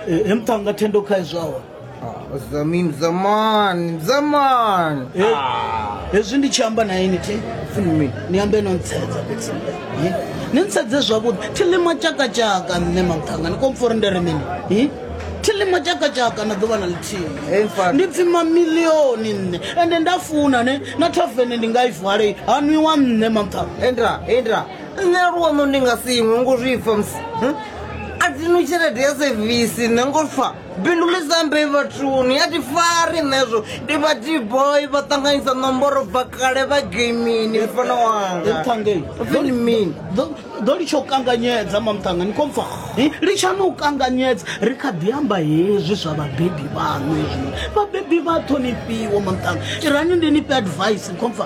eh mtanga tendo kai zwawa Ah, zamin zaman zaman eh hezwi ndi tshi amba na ini thi fumi ni ambe no ntsedza fhedzi Eh, ni ntsedze zwavhuḓi thi ḽima tshakatshaka nṋe mamthanga ni komfori ndere mini Eh, thi ḽima tshakatshaka na ḓuvha na Hey, ḽithihi mfana. ndi pfi mamilioni nṋe ende nda funa ne na thavene ndi nga i vale ha nwiwa nṋe mamthanga endra endra nṋe luono ndi nga si iṅwe ngo zwi pfa musi hm? a thi no tshelede ya sevisi nṋe ngo pfa bindu ḽi sambe vhathuni a thi fari nṋezwo ndi vha dboy vha ṱanganyisa ṋomboro bva kale vha gamini mfana wanga Mthangeni. Ofini mini Ḓo- ḓo litsha u kanganyedza mamthanga ni khou pfa Eh, litshani u kanganyedza ri kha ḓi amba hezwi zwa vhabebi vhaṋu hezwi vhabebi vha ṱhonifhiwa mamthanga irani ndi ni fhe advice ni khou pfa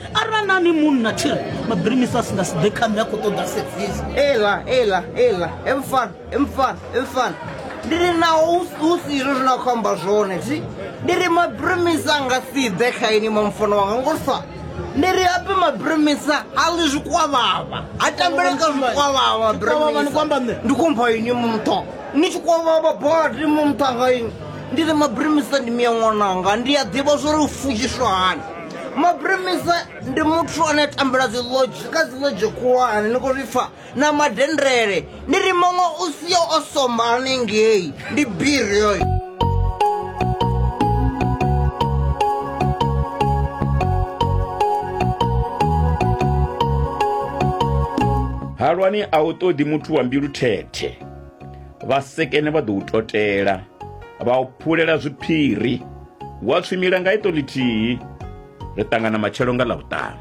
arali na ni munna tshiri mabirimisi a si nga si ḓe kha nṋe a khou ṱoḓa sevisi ela ela ela emfan emfan emfan ndi ri naho hu si izwo zwine a khou amba zwone thi ndi ri mabirimisi a nga si ḓe kha ini mamfono wanga ngo sa ndi ri ape mabirimisa a ḽi zwikwavhavha ha tambele ka zwikwavhavha mabirimisa ndi khou mpha ini mutho ni tshi kwavhavha badi muthu anga ini ndi ri mabirimisa ndi miya ṅwananga ndi a ḓivha zwo ri u fudziswa hani mabremisa ndi muthu ane a tambula dziloji kha dziloji khulwane ni khou zwi pfa na madendele ni ri muṅwe u sia o somba hanengei ndi biri yoyo halwani a u ṱoḓi muthu wa mbilu thethe vhasekene vha ḓo u totela vha u phulela zwiphiri Wa tswimila nga iṱo ḽithihi, ri ṱangana matshelo nga Ḽavhuṱanu.